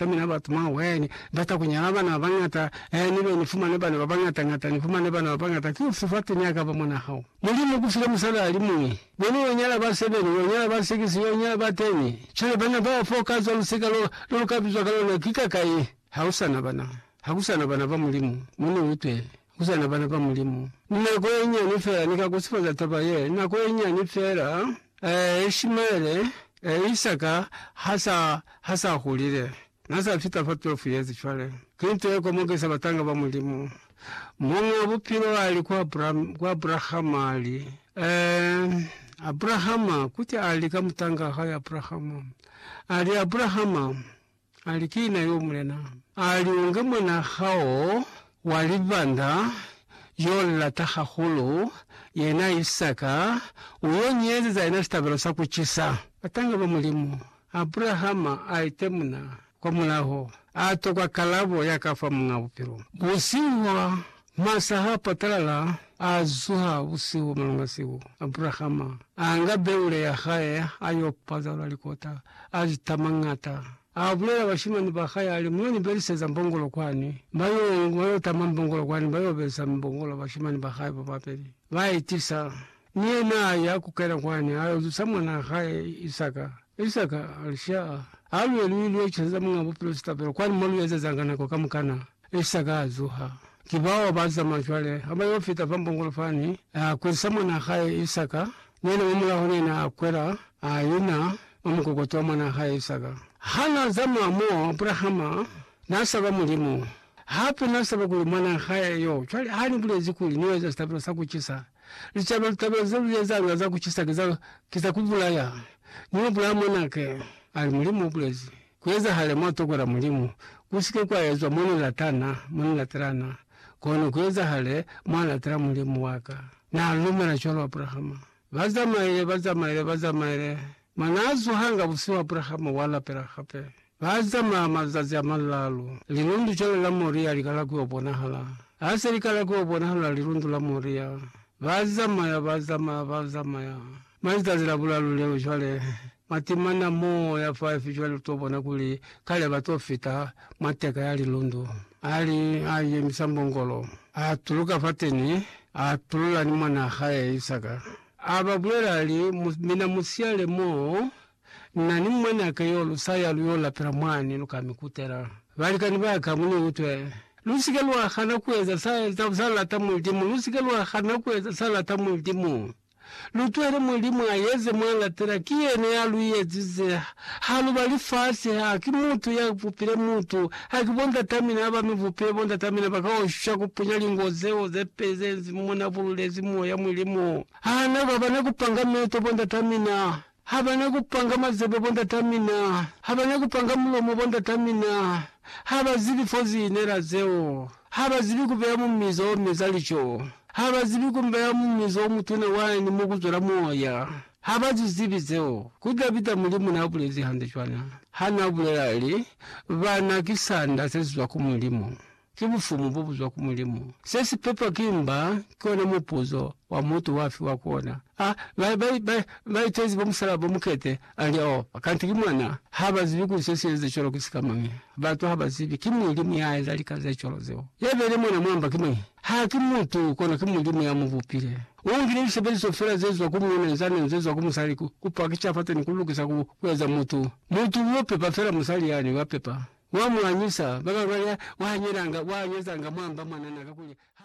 ka mina batu maweni bata kunyala bana babangata eh nibe nifumane bana babangata ngata nifumane bana babangata ki ufi fati niakaba mwana hao mulimu ukufile musali alimuñwi beni yonyala ba sebeni yonyala ba sikisi yonyala ba teni cwale bana baba fo kazwa lusika lo lolukabizwa kalona kikakai hausana bana hakusana bana ba mulimu muni utwe ku zana bana ba Mulimu. Ni nako ye nyani fela ni ka kusufaza taba ye, nako ye nyani fela, eh, Ishimaele, eh, Isaka, ha sa, ha sa hulile. Na sa fita fa 12 yezi cwale. Ki nto ye komokisa batanga ba Mulimu. Muñ'a Bupilo ali ku Abram, ku Abrahama, ali, Eh, Abrahama, kuti ali ka mutang'a hae Abrahama, ali, Abrahama, Ali, Ki na yo, Mulena. Ali, U nge mwana hao wa libanda yo u lata hahulu, yena Isaka, u yo ni ezeza yena sitabelo sa ku cisa. Batanga ba Mulimu. Abrahama a itemuna kwa mulaho, a tokwa kalabo ya ka fa Muñ'a Bupilo. Busihu Masa ha patalala a zuha busihu malunga siku, Abrahama a nga beule ya hae a yo pazalula likota, a li tamangata. A bulela bashimani ba hae a li, Mu yo ni beliseza mbongolo kwani. Ba yo, ba yo tama mbongolo kwani, ba yo belisa mbongolo bashimani ba hae ba babeli. Ba i tisa. Ni yena a ya ku kena kwani, a yo zusa mwanaa hae Isaka. Isaka a li, Sha, ha lu ye lu ilo ecezeza Muñaa Bupilo sitabelo, kwani mo lu ezezanga nako kamukana. Isaka a zuha. Ki bao ba zamaya cwale, ha ba yo fita fa mbongolo fani, a kwelisa mwanaa hae Isaka, ni yena mwa mulaho, ni yena a kwela, a ina mwa mukokoto wa mwanaa hae Isaka. Ha n'a zamaya mo, Abrahama n'a saba Mulimu, hape n'a saba kuli mwanaa hae yo. Cwale ha ni bulezi kuli ni yo eza sitabelo sa ku cisa, Licalo litaba ze lu ezanga za ku cisa ki za, ki za ku bulaya. Ni yo bulaya mwanake, ali, Mulimu u bulezi, ku ezahale mwa toko la Mulimu, ku si ke kwa ezwa mo ni latana, mo ni latelana, kono ku ezahale mwa latela Mulimu wa ka. Na lumela cwalo Abrahama. Ba zamaile, ba zamaile, ba zamaile, Mwa naa zuhanga busihu Abrahama wa lapela hape. Ba zamaa mazazi a malaalu. Lilundu cwale la Moria li kala ku yo bonahala. Ha se li kala ku yo bonahala lilundu la Moria, ba zamaya, ba zamaya, ba zamaya. Mwa lizazi la bulalu leo cwale, matimana mo ya faifi cwale lu to bona kuli kale ba to fita mwa teka ya lilundu. A li, a yemisa mbongolo. A tuluka fateni, a tulula ni mwanaa hae Isaka. A ba bulela a li, Mina mu siyale mo na ni mwanaka yo lu sa ya lu yo lapela mwani, lu ka mi kutela. Balikani ba ka, mu ni utwe. Lu si ke lwa hana ku eza sa, sa, sa lata Mulimu. Lu si ke lwa hana ku eza sa lata Mulimu. Lu tuhele Mulimu a eze mwa latela. Ki yena ya lu yezize Ha lu ba lifasi, ha ki mutu ya bupile mutu, ha ki bondatamina ha ba mi bupile bondatamina ba ka oshwa ku punya lingo zeo ze peli ze nzi muna bululezi Moya Mulimu. Ha na ba bana ku panga meto bondatamina, ha ba na ku panga mazebe bondatamina, ha ba na ku panga mulomo bondatamina, ha ba zibi fo zi inela zeo, ha ba zibi ku beya mumizo o meza lico, ha ba zibi ku beya mumizo o mutuna wani mo ku zwela Moya. Ha ba zi zibi zeo, ku tla pita Mulimu n'a bulezi hande cwana ha n'a bulela li, Bana ki sanda se si zwa ku Mulimu. Ki bufumu bo bu zwa ku Mulimu. Se si pepwa ki mba ki ona mupuzo wa mutu wa fiwa ku ona. A ba, ba, ba, ba itezi bo musalaba bo mukete, a li, Oh, kanti ki mwana. Ha ba zibi kuli se si eza cwalo ki sika mañi. Batu ha ba zibi ki Mulimu ya eza lika ze cwalo zeo. Ya beile mwana mwa mba ki mañi? Ha ki mutu, kono ki Mulimu ya mu bupile. Mu ngi ni lisebeliso fela ze zwa ku muuna izani ni ze zwa ku musali ku, ku pakisha fata ni ku lukisa ku, ku eza mutu. Mutu uyo pepa fela musali yani, wa pepa. Wa mu anyisa. Ba banga nya, wa hanyelanga, wa anyezanga mwa mba mwanana kakuli ha.